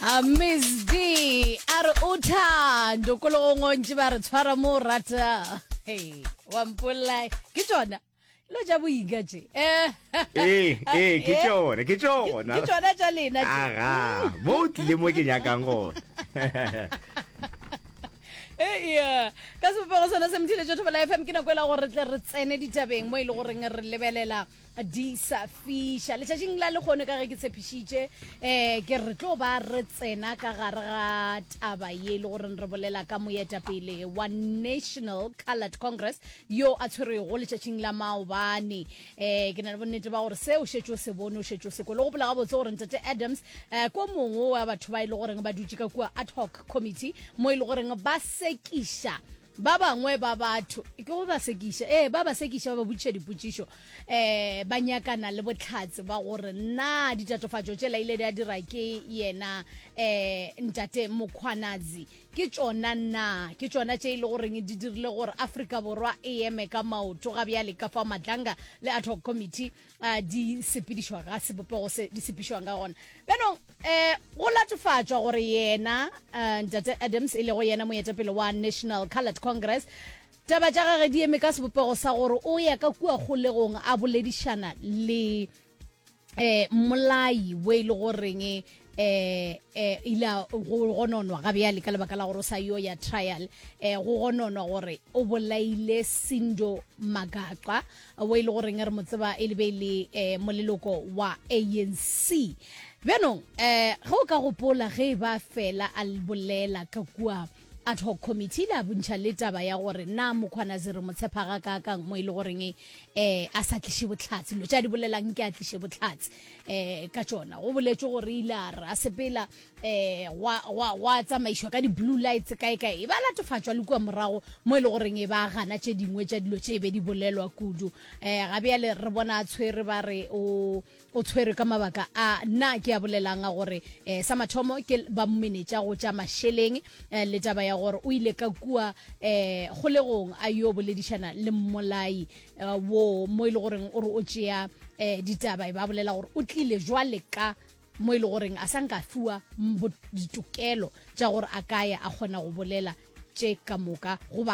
a miss d a re o thando kologong ontši ba re tshwara mo o rata hey, wa mpolai ke tsona lo ja boika tše Eh, ee ee ke eh, tšone ke ke tšona tsona tša lena tše aga mo o tlile mo ke nyakang gone ea ka sebopego sona se mothiletšo thobola fm ke nako e la gore re tle re tsene ditabeng mo e le goreng re lebelela di sa fiša letšatšing la lekgono ka ge ke tshepišitše um ke re tlo ba re tsena ka gare ga taba ye e le goreng re bolela ka moetapele wa national colored congress yo a tshwerego letšatšing la maobane um ke na le bonnete ba gore seo šetše o se bone o šetše o se kole gopola gabotse gore ntate adams um ko mongwe wa batho ba e le goreng ba dutše ka kua ad hoc committee mo e le goreng ba sekiša Ba bangwe ba batho, ke go ba sekiša, ee, ba ba sekiša, ba ba botšiša dipotšišo, um ba nyakana le bohlatse ba gore na ditatofatšo tšela ile di a dira ke yena um ntate Mkhwanazi ke tšona na, ke tšona tše e le goreng di dirile gore Afrika Borwa e eme ka maoto ga bjale ka fa Madlanga le Ad Hoc Committee a di sepedišwa ga sebopego se di sepišwang ka gona bjanong um go latofatšwa gore yena um ntate adams e lego yena moetapele wa national colored congress taba tša gage di eme ka sebopego sa gore o ya ka kua kgolegong a boledišana le um molai wo e le goreng eh eh ila go gononwa ga bjale ka lebaka la gore o sa yo ya trial eh go gononwa gore o bolaile sindo magaqa o e le goreng re mo tseba e le be le eh moleloko wa anc bjanong eh ge o ka gopola ge e ba fela a bolela ka kua Ad hoc committee e ile ya bontšha le taba ya gore na Mokgwanazi re mo tshepa gakaakang mo e le goreng um a sa tliše bohlatse, dilo tše a di bolelang nke a tliše bohlatse um ka tšona. Go boletšwe gore ile a re a sepela um gwa, gwa, gwa tsamaišwa ka di-blue lights kaekae, e be a latofatšwa le kua morago mo e le goreng e ba a gana tše dingwe tša dilo tše e be di bolelwa kudu. Um ga bjale re bona a tshwere ba re o O tshwerwe ka mabaka a na ke a bolelang a gore eh, sa mathomo ke ba mmenetša go tša mašeleng eh, le taba ya gore o ile ka kua eh, kgolegong a yo boledišana le mmolai eh, wo mo e le goreng o re o tšea eh, ditaba e ba bolela gore o tlile jwale ka mo e le goreng a sa nka fiwa ditokelo tša gore a kaya a kgona go bolela tše ka moka goba